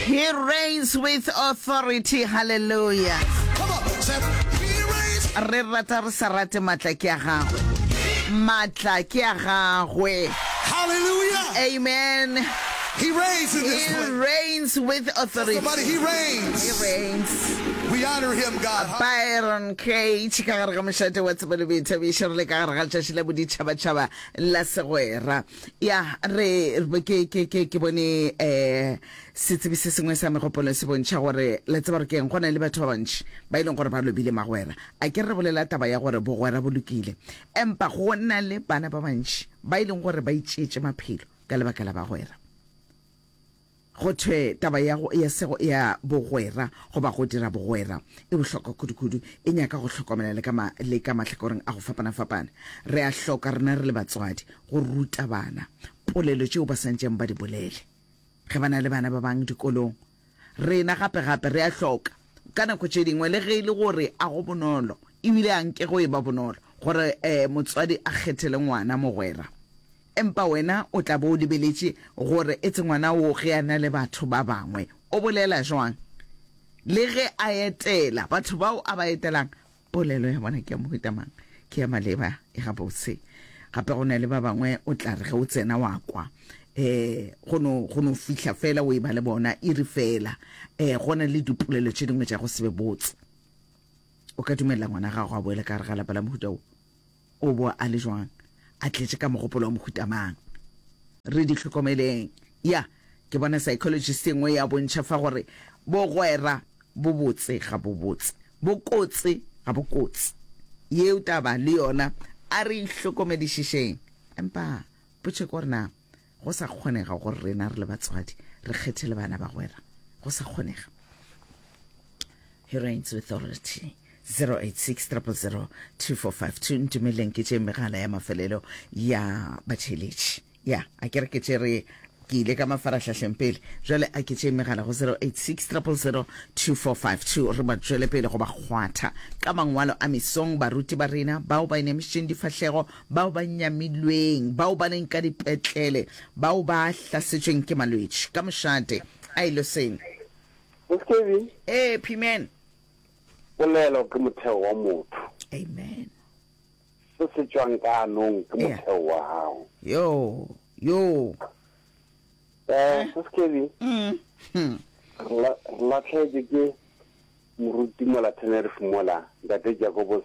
He reigns with authority, hallelujah. Re rata re sa rate matla ke a gagwe. Matla ke a gagwe. Hallelujah. Amen. He reigns in this place. He reigns with authority. Somebody, he reigns. He reigns. We honor him, God. Byron Cage ka gare ga mošate wa tsebo le boithabišo re le ka gare ga tšatši la boditšhabatšhaba la segwera. ya re ke ke ke ke bone eh setsebi se sengwe sa megopolo se bontšha gore le tseba gore ke eng go na le batho ba bantši ba e leng gore ba lobile magwera a ke re bolela taba ya gore bogwera bo lokile empa go na le bana ba bantši ba e leng gore ba itšeetše maphelo ka lebaka la bagwera Go thwe taba ya go ya sego ya bogwera goba go dira bogwera e bohlokwa kudukudu, e nyaka go hlokomela le ka ma, le ka mahlakoreng a go fapana-fapana. Re a hloka, rena re le batswadi, go ruta bana polelo tšeo ba santšeng ba di bolele ge ba na le bana ba bang dikolong. Rena gape-gape re a hloka, ka nako tše dingwe, le ge e le gore a go bonolo, ebile a nke go e ba bonolo, gore um motswadi a kgethele ngwana mogwera. Empa wena o tla bo o lebeletše gore etse ngwana wo ge a na le batho ba bangwe o bolela jwang. Le ge a etela, batho bao a ba etelang polelo ya bona ke ya mohuta mang? Ke ya maleba, e gabotse. Gape go na le ba bangwe o tla re ge o tsena wa kwa um go no go no fihla fela o e ba le bona iri fela. Um go na le dipolelo tše dingwe tša go se be botse. O ka dumelela ngwana gago a boele ka gare ga lapa la mohuta wo? O bo a le jwang? A tletše ka mogopolo wa mohuta mang? Re di hlokomeleng. Ya, ke bona psychologist e nngwe ya bontšha fa gore bogwera bo botse ga bo botse, bo kotse ga bo kotse. Yeo taba le yona a re e hlokomedišišeng. Empa potšeko gore na Go sa kgonega gore rena re le batswadi re kgethele bana bagwera. Go sa kgonega. He reigns with authority. 086 000 2452 ntumeleng ke tše megala ya mafelelo ya batšheletši ya a ke re ke tše re ke ile ka mafarahlahleng pele jale a ke tšee megala go 0860002452 re ba tšwele pele go ba kgwatha ka mangwalo a mesong baruti ba rena bao ba inemišitšeng difahlego bao ba nyamilweng, bao ba leng ka dipetlele, bao ba hlasetšweng ke malwetši, ka mošate. A e lo seng? Yes, Kevin. Ee, P-man. Polelo ke motheo wa motho. Amen. Se se tšwang ka anong ke Ea. motheo wa gago. Yo, yo. Eh, Eh. Sis Kevin, Mm. Hmm. re la- re latlhegetswe ke moruti mola Tenerife mola, Ntate Jacobos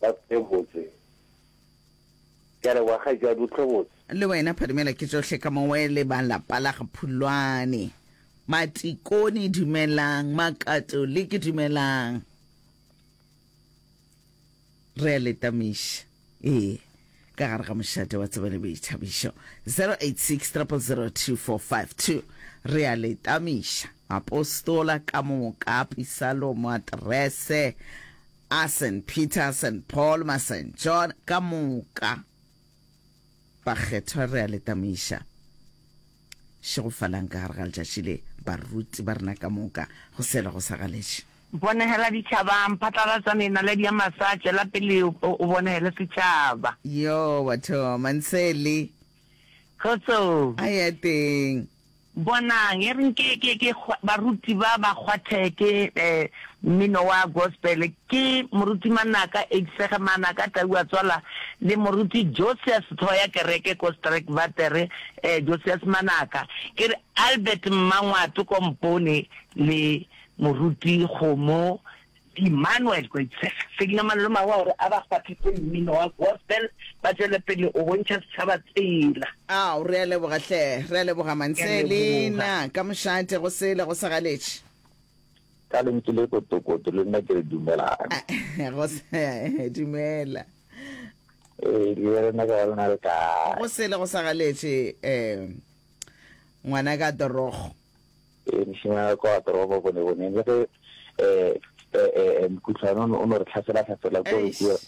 Ba tswe botse. Ke a leboga kgaetšadi, o tle botse. Le wena Phadimela ke tsohle ka mo we le ba lapa la ga Phulwane. Matikoni dumelang, makatoliki dumelang. Re a le tamiša. Ee, ka gare ga mošate wa tseba le boithabišo. 086 0002452. Re a le tamiša. Apostola ka mokapi Salomo aterese. a Saint Peter, Saint Paul, ma Saint John, ka moka bakgethwa re a le tamaiša šegofalang ka gare ga letšatši le, baruti ba rena ka moka, go sela go sa galetše. Bonegela ditšhabang, phatlalatša menaledi ya mafsa, tšwela pele o bonegele setšhaba. Yoo, batho, Mansele. Kgotsong. A ya teng. Bonang, e reng ke, ke, ke kgwa, baruti ba ba kgwathe ke e, mmino wa gospel. Ke Moruti Manaka H. Segemana ka tau a tswala le Moruti Josias tlhogo ya kereke ko Streckwater, e, Josias Manaka. Ke re Albert Mmangwato Kompone le Moruti Kgomo Di-Manoel Koitse, Selina Malomagwe gore a ba kgwathetse mmino wa gospel ba tšwele pele o bontšha setšhaba tsela. Ao, re a leboga hle. Re a leboga Manselina ka mošate go sele go sa galetše. Ka lentšu le kotokoto le nna ke re dumelang. Go se, dumela. Ee, le rena ka ba lona le kae? Go sele go sa galetše, eh, ngwana ka Dorogo. Mešomo ya kwa toropo boneboneng le ge um mokhutlwane o no re tlhaselatlhasela ko re keo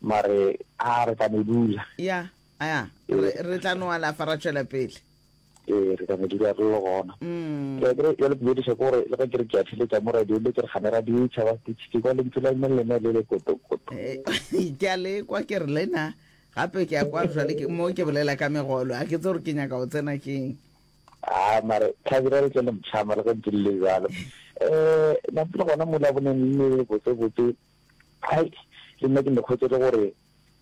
mare a re ka no dula ya ya re tla no alafa ra tšwela pele ee re ka no dula re le gona mm. ya kere ya le bodiša ko gore le ge ke re ke a theletsa mo radio le ke re gane radio e tšhaba ke tshike kwa lentswe la mme lena le le kotokoto eh, ke a le kwa ke re lena gape ke ya kwa jale mo ke bolela ka megolo a ke tse gore ke nyaka go tsena keng Haa mare Thabile a re ke le motjha mare ge ntse le le bjalo um nate le gona mola bo neng le le botsebotse hai le nna ke ne kgwetse le gore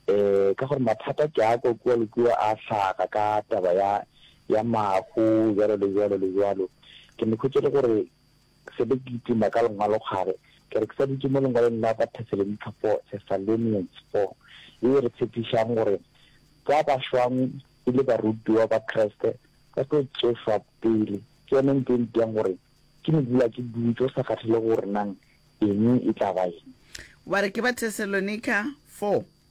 um ka gore mathata ke a kwa kua le kua a hlaga ka taba ya ya mahu jalo le jalo le jalo ke ne kgwetse le gore Se be kitima ka lengwalokgare, ke re ke sa dutše mo lengwalong la Batheselonika 4, Thessalonians 4, ye e re tshepišago gore ba ba šwago e le barutiwa ba Kriste ba tlo tsošwa pele, ke yona ntho e mpšago gore ke no dula ke dutše go sa kgathele gore nang eng e tla ba eng. Wa re ke Batheselonika 4,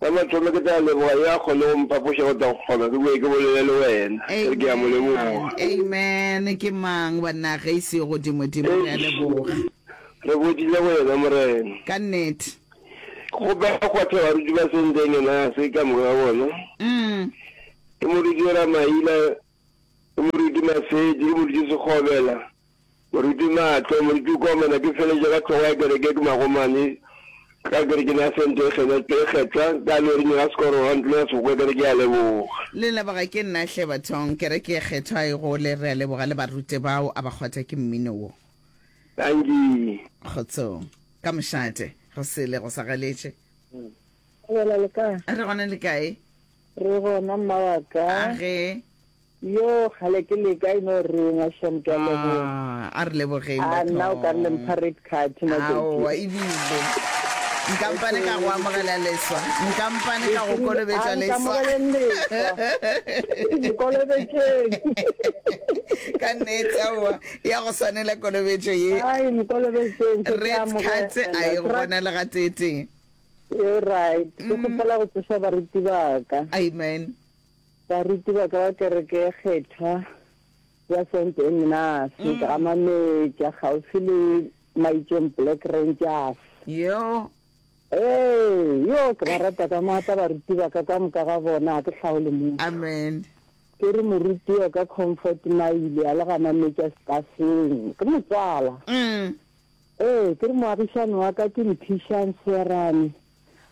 Sa mathomo ke tla leboga yo a kgone go mphapoša go tla go kgona ke boe ke bolele le wena. Ke re ke a mo leboga. Amen. Ke mang banna ge e se godimo dimo? Re a leboga. Re botile go yena Morena. Ka nnete. Ke kgopela go kgwatha baruti ba Senteng ena a se ka moka ga bona. Ke moruti Ramaila, ke moruti Masedi, ke moruti Sekgobela. Moruti Maatlo, Moruti o kwa mona ke feleletša ka hlogo ya kereke ke magomane ka kerekeng ya Sente e kgenetšwe e kgetha ka leoring la sekoro ga ntlong ya seboka kereke ya leboga. Le leboga ke nna hle bathong kereke e kgethwa e gole re a leboga le barute bao a ba kgwatha ke mmino wo. Dankie. Kgotsong. Ka mošate. Go sele go sa galetše. Re gona le kae? Re gona le kae? Re gona mma wa ka. A ge. Yoo, kgale ke leka e no rongwa, Sham, ke a leboga. Ah, a re lebogeng, Ah, batho. nna o ka re le mpha red card, na Aowa, Jackie. ebile. Nkampane ka go amogela leswa. Nkampane ka go kolobetša A leswa. nkamogeleng leswa. Nkolobetšeng. Ka nnete, aowa, ya go swanela kolobetšo ye. Ai, nkolobetšeng, ke tla Red card amogela. a e Ke ra- gona le gatee-tee. You're right. Ke kgopela go tsoša baruti ba ka. Amen. Baruti ba ka ba kereke e kgethwa ya Saint Ignace go gamametša kgauswi le Maitšong Black Rangers. Yeo. Ee, yoo, ke ba rata ka maatla baruti ba ka, ka moka ga bona ga ke hlaole motho. Amen. Ke re moruti yo ka Comfort Maile a le gamametša stafeng. Ke motswala. Ee, ke re moagišani wa ka ke Mphišang Seerane.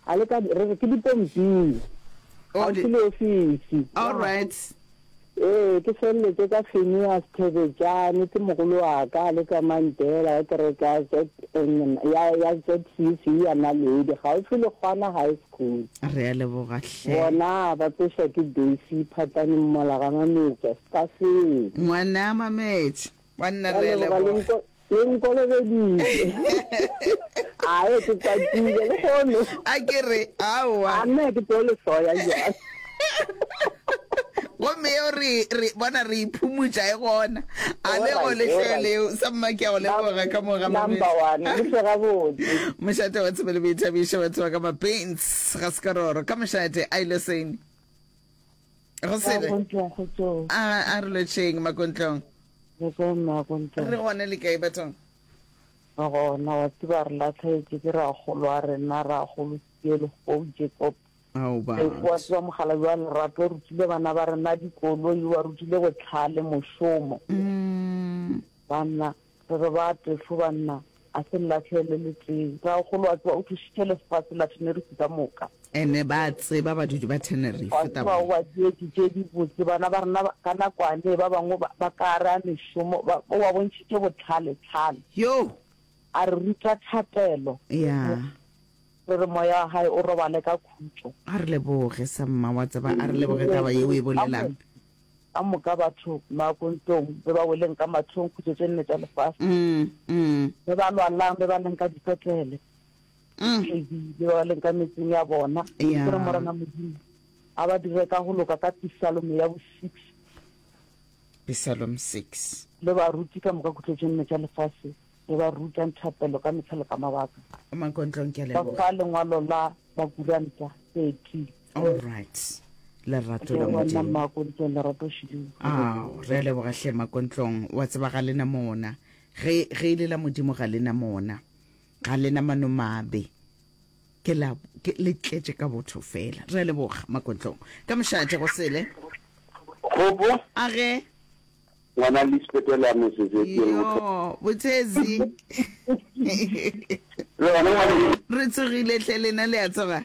A le ka, re re ke dipomping, Oh, kgauswi di- le ofisi. All right. Ee, ke feleletše ka Phineas Thebetšane, ke mogolo wa ka, a le ka Mandela, ya kereke ya ZN ya, ya ZCC ya Naledi, kgauswi le Kgwana High School. Re a leboga hle. Bona ba tsošwa ke Daisy Phatane Mmolaganga Metša, Stafeng. Ngwana Mametša. Banna Ka re a leboga le leboga. nko- le nkolobeditše. Ae, ke kwatile le kgono. A ke re, aowa. A nna ke tlo le soya jwang. gomme yeo re re bona re iphumutša e gona a le go Alright, lehleo alright. leo sa mma ke a go leboga ka mo ga Number Mamedi. one, le tle gabotse. mošate wa tshebele boithabiša batho ba ka mapens ga sekaroro ka mošate a ile sene go sebe Makontlong go tso. a a re lotšheng makontlong Re ka ema re Makontlong. gone le kae bathong Re gona wa tseba re latlhegetse ke ragolo a rena ragolo Sielo go Jacob. ao ba Ee, wa tseba mogala wa lerato o rutile bana ba rena dikoloi wa rutile botlhale mošomo Mm, banna Re re ba tefo banna, a se nlahle le letee. Rraagolo a tsoa o thušitše lefase la Tenerife ka moka. Ene ba a tseba badudi ba Tenerife. Wa tseba o ba dietše tše dibotse bana ba rena ka nakoane ba bangwe ba ka gare a mešomo. Ba, o ba bontšhitše bohlale, tlhale. Yoo! A re ruta thapelo. Ya. Re re moya wa gae o robale ka khutšo. A re leboge sa mma, wa tseba, a re leboge taba ye o e bolelang. Ka moka batho makontong be ba weleng ka mathong khutso tše nne tša lefase, be ba lwalang be ba leng ka dipetlele, tledi be ba leng ka metseng ya bona. Ke re, Morena Modimo, a ba dire ka go loka ka Pisalome ya bo six, Pisalome six, le baruti ka moka khutlo tše nne tša lefase be ba ruta nthapelo ka mehla le ka mabaka, makontlong. Ke a leboga. Ba fa lengwalo la Bakuranta thirty. all right lerato la modimo ao re a leboga hle makontlong wa tseba ga lena mona ge ge e le la modimo ga lena mona ga lena mano mabe ke la ke le tletše ka botho fela re a leboga makontlong ka mošate go sele gopo a ge ngwana lisbetele ya mesesetseng yo bothezi re tsogile tle lena le a tsoga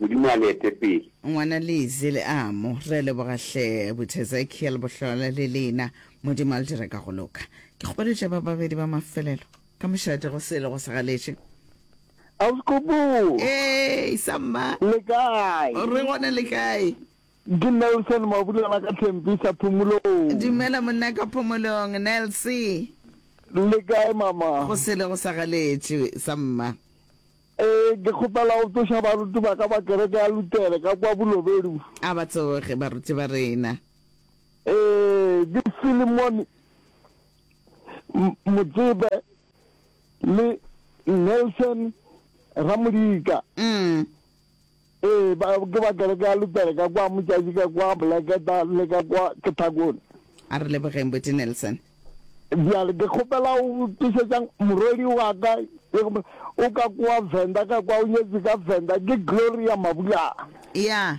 Modimo a le ete pele. Ngwana Lizzy Leamo, re leboga hle Abuti Ezekiel Bohlola le lena, Modimo a le dire ka go loka. Ke kgoletše ba babedi ba mafelelo ka mošate go se ilego sa galetše. Ausi Kgopo! Ee, sa mma! Le kae? Re gona, le kae? Ke Nelson Mabulana ka Tempi sa Phomolong. Dumela monna ka Phomolong, Nelsy. Le kae mama? Go se ilego sa galetše, sa mma. Ee, ke kgopela go tsoša baruti ba ka ba kereke ya Lutere ka kwa Bulobedu. A ba tsoge baruti ba rena. Ee, ke Philemon Motsebe le Nelson Ramodika. Umm. Ee, ba, ke ba kereke ya Luthere ka kwa Motšatši ka kwa Boleketa le ka kwa Kethakone. A re lebogeng Buti Nelson. Bjale ke kgopela o tlišetšang morwedi wa ka o ka kwa Venda ka kwa o nyetše ka Venda ke Gloria Mabulana. Ya.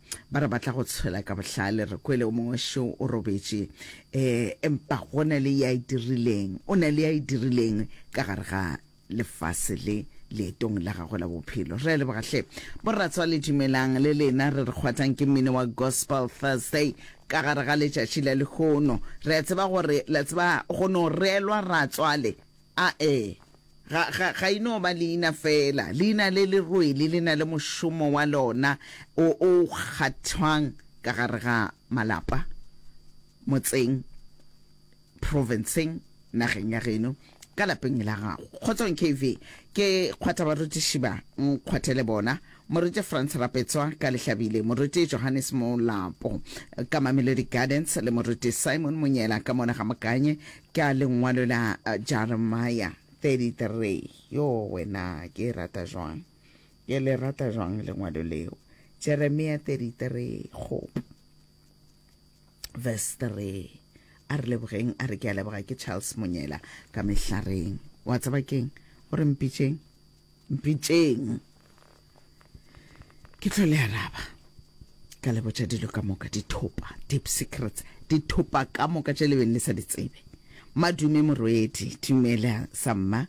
Ba re ba tla go tshwela ka bohlale. Re kwele o mongwe šo o robetše. E, empa go na le ya e dirileng. O na le ya e dirileng ka gare ga lefase le leetong la gagwe la bophelo. Re a leboga hle. Boratswale dumelang le lena. Re re kgwathang ke mmino wa Gospel Thursday ka gare ga letšatši la lehono. Re a tseba gore la tseba go no reelwa ratswale A E ga, ga, ga e no ba leina feela. Leina le le rwele le na le mošomo wa lona o, o kgathwang ka gare ga malapa, motseng, provinceng, nageng ya geno, ka lapeng la gago. Kgotsong KV, ke kgwatha barutiši ba, nkgwathe le bona, Moruti Frans Rapetswa, ka Lehlabile, Moruti Johannes Molapo, ka Mamelodi Gardens, le Moruti Simon Monyela, ka Monagamokanye, Ke a Lengwalo la Jeremia 33. Yoo, wena, ke e rata jwang! Ke le rata jwang Lengwalo leo! Jeremia 33, kgopo. Verse 3. A re lebogeng, a re, Ke a leboga, ke Charles Monyela, ka Mehlareng. Wa tseba ke'ng? O re, Mpitšeng. Mpitšeng! ke tlo le araba ka le botša dilo ka moka dithopa deep secrets dithopa ka moka tše le beng le sa di tsebe madume morwedi dumela samma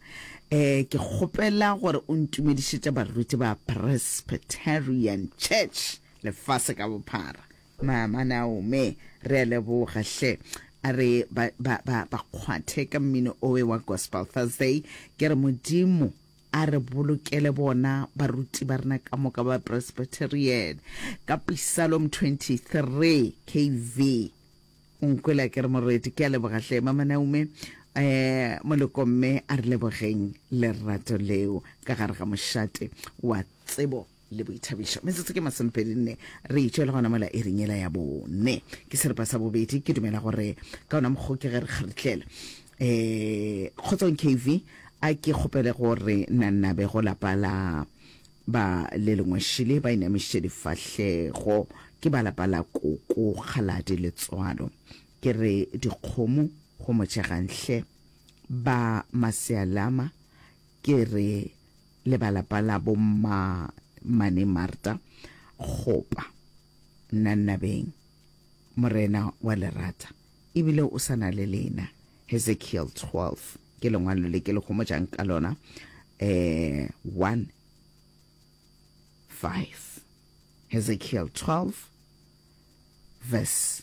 eh ke kgopela gore o ntumedišetša baruti ba presbyterian church lefase ka bophara mama naome re a leboga hle a re ba kgwathe ka mmino owe wa gospel thursday ke re modimo A re bolokele bona baruti ba rena ka moka ba Presbyterian. Ka Psalom 23, KV. O nkwela ke re Morwedi, ke a leboga hle, Mama Naume. Eh, Moleko mme a re lebogeng lerato leo ka gare ga mošate wa tsebo. le boithabišo. Metsotso ke masomepedi nne re itšwe le gona mola iring yela ya bone ke seripa sa bobedi ke dumela gore ka ona mokgo ke ge re kgaritlela um kgotsong kv a ke kgopele gore nannabe go lapa la ba le lengwešile ba inamišitše difahlego ke ba lapa la koko kgaladi letswalo ke re dikgomo go motšeganhle ba masealama ke re le ba lapa la bo mma mane Marta gopa Nannabeng morena wa lerata ebile o sa na le lena Hezekiel 12 ke lengwalo le ke le homojang ka lona eh 1 5 Hezekiel 12 verse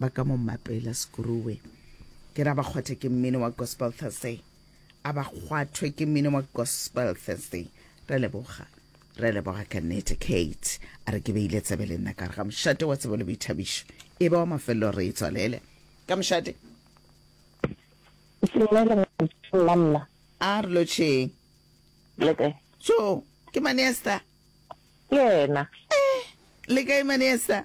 Ba ka mo mapela Sekuruwe. Ke ra ba kgwathe ke mmino wa Gospel Thursday. A ba kgwathwe ke mmino wa Gospel Thursday. Re leboga. Re leboga ka nnete. Kate a re ke beile tsebe le nna ka re ga mošate wa tsebo le boithabišo e ba wa mafelelo re e tswalele ka mošate. Sengwe le ngwetšong la mna. A re lotšheng. Le kae? Tjo, ke Manesta. Ke yena. Eh, le kae Manesta?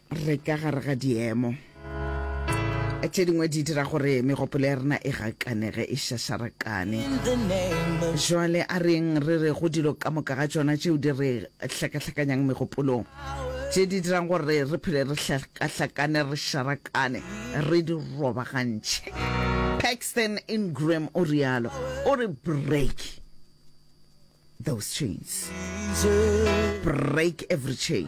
re ka gare ga diemo tše dingwe di dira gore megopolo ya rena e gakanege e šašarakane jwale a reng re re go dilo ka moka ga tšona tšeo di re hlakahlakanyang megopolong tše di dirang gore re phele re hlakahlakane re šarakane re di robagantšhe paxton ingram o rialo o re break those chains break every chain